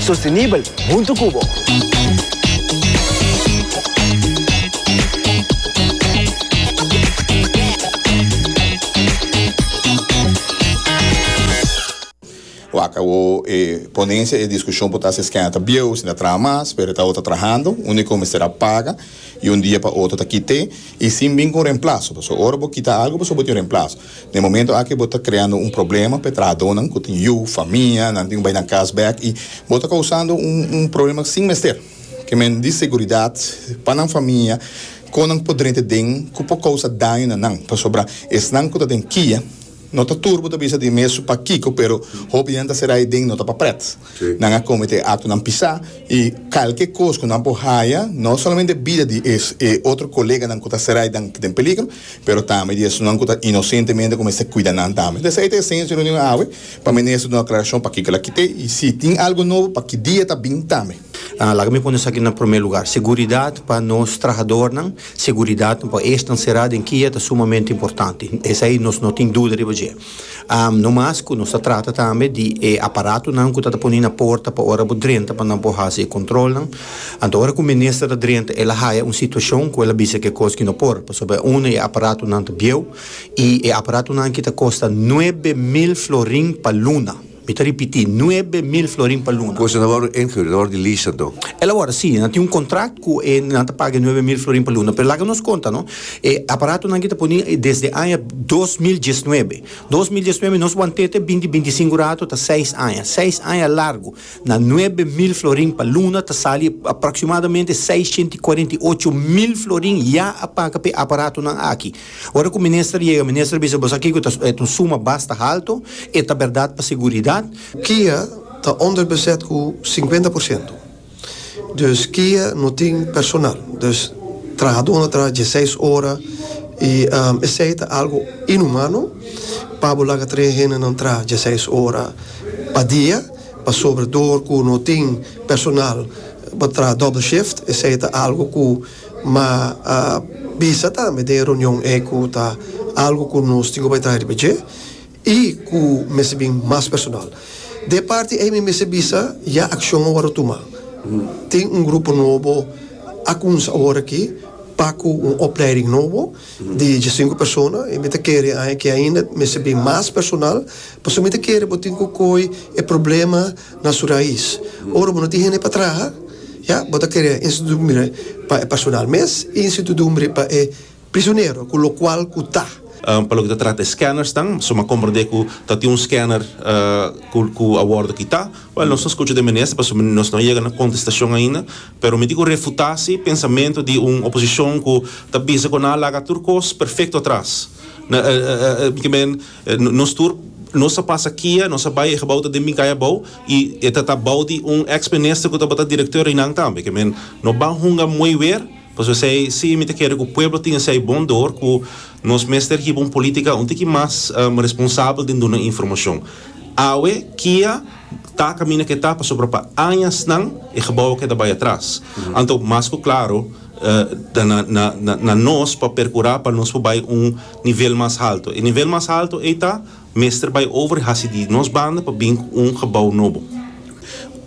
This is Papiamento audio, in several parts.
Sostenibel hunto cu bo. Wak awo e ponencia e discusion por ta haci esquena ta bieu si ta traha mas pero ta awo ta trahando unico mester a paga y un dia pa otro ta kite y sin bin con remplazo pasobra ora bo kita algo pasobra bo tin remplazo. Na e momento aki bo ta kreando un problema pa e trahadónan ku tin yu, famia, nan tin ku bai nan kas bèk i bo ta kousando un problema sin mester. Ke men di seguridat pa nan famia kon nan por drenta den ku por kousa daño na nan pasobra esnan ku ta den kia no ta tur bo ta bisa di mes p'akiko pero hopi di nan ta será ei den no ta pa prèt. Nan a cometé actonan pisá y calke cos cu nan por haya, no solamente bida di e otro coleganan cu ta serai dan den peligro, pero tambe di esunnan cu ta inocentemente cu mester cuida nan tambe. Ta esei ta e senso di reunion awe, pa Minister duna aclaracion pakico el a kit'é y si tin algo nobo paki dia ta bin tambe. Laga mi pone esaki na prome lugar, seguridad pa nos trahadornan, seguridad pa esnan será den kia ta sumamente importante, esei nos no tin duda riba dje. No mas cu nos ta trata tambe di e aparatonan cu ta ta poni na porta pa ora bo drenta pa nan por haci e controlnan. Anto ora cu un minister ta drenta el a haya un situacion cu el a bisa kikos cu no por. Pasobra uno e aparatonan ta bieuw y e aparatonan aki ta costa nuebe mil florin pa luna. Mi ta ripití, nuebe mil florin pa luna. Ku esnan wòrdu enhür, nan wòrdu di lista anto? El a wòrdu sí, nan tin un kontrakt ku e, nan ta paga e nuebe mil florin pa luna. Pero laga nos konta no, e aparatonan ki ta poní desde aña dos mil diesnuebe. Dos mil diesnuebe nos want'é te binti binti i sinku rato, ta seis aña. Seis aña largu. Na nuebe mil florin pa luna ta sali aproksimadamente seisshent i kuarent i ocho mil florin ya a paga p'e aparatonan aki. Ora ku minister yega, minister a bisa, Bo sa kiko ta e ta un suma basta haltu, e ta bèrdat pa seguridat. Kia ta onderbezet ku sinkuenta por siento. Dus kia no tin personal. Dus trahadó na traha dieseis ora i esei ta algu inhumano pa bo laga tres hendenan traha dieseis ora pa dia pasobra dor ku no tin personal pa traha doble shift. Esei ta algu ku. Ma a bisa tambe den e reunion ei ku ta algu ku nos tin ku bai traha riba dje i ku mester bin mas personal. Den e parti ei mi mester bisa ya akshon a wòrdu tuma. Tin un grupo nobo a kuminsa awor aki pa ku un opleiding nobo di djesinku persona i mi ta kere aña ke ainda mester bin mas personal pasobra mi ta kere bo tin ku kohe e problema na su rais. Ora bo no tin hende pa traha, ya, bo ta kere institudumbre pa e personal mes y institudumbre pa e prisionero, cu locual cu ta. Pa loke ta trata e scannersnan, suma a comprende cu ta tin un scanner cu a wordo kita. Well, nos no scucha den Minister pasobra nos no a yega na contestacion ainda, pero mi tin cu refuta si pensamento di un oposicion cu ta bisa cu nan a laga tur cos perfecto atras. Nos tur nos a pasa kia, nos a bai e gebou ta den Minkaya abou y e ta ta bou di un ex minister cu tabata director eynan tambe. Ke men no ban hunga moe weer pasobra esey si mi ta kere cu pueblo tin esey bon door cu nos mester hiba un politica un tiki mas responsabel den duna informacion. Awe kia ta caminda ke ta pasobra pa añasnan e gebou a keda bai atras. Anto mas cu claro na nos pa percura pa nos por bai un Nivel mas halto. E nivel mas halto ei ta mester bai over i hasi di nos banda pa bin ku un gebou nobo.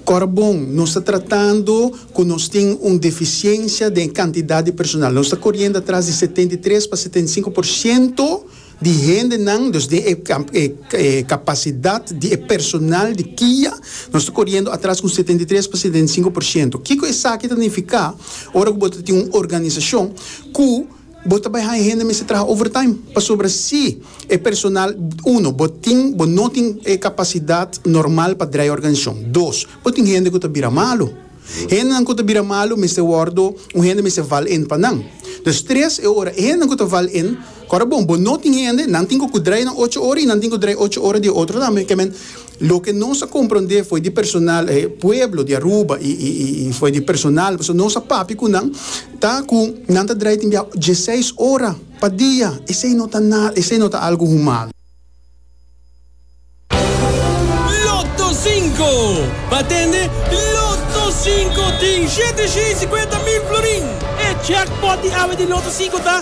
Kòrda bon, nos ta tratando ku nos tin un defisiensia den kantidat di personal. Nos ta koriendo atras di setenta i tres pa setenta i sinku por siento di hendenan, dus den e e kapasidat di e personal di kia nos ta koriendo atras ku setenta i tres pa setenta i sinku por siento. Kiko esaki ta nifiká ora ku bo ta tin un organisashon ku. Bo ta bai haña hende mester traha overtime pasobra si e personal, uno, bo tin, bo no tin e kapasidat normal pa drai e organisacion. Dos, bo tin hende ku ta bira malu. Hendenan ku ta bira malu mester wòrdu, un hende mester val in pa nan. Dus tres, e ora e hendenan ku ta val in, ku ora bon, bo no tin hende, nan tin ku ku drai nan ocho ora i nan tin ku drai ocho ora di e otro tambe, ke men, Loke nos a komprondé fo'i di personal e pueblo di Aruba i fo'i di personal pasobra nos a papia ku nan ta ku nan ta drai tin biaha dieseis ora pa dia. Esei no ta nada, esei no ta algu human. Lotto Sinko! Pa tende Lotto Sinko tin shete shei sikuenta mil florin! E jackpot di awe di Lotto Sinko ta.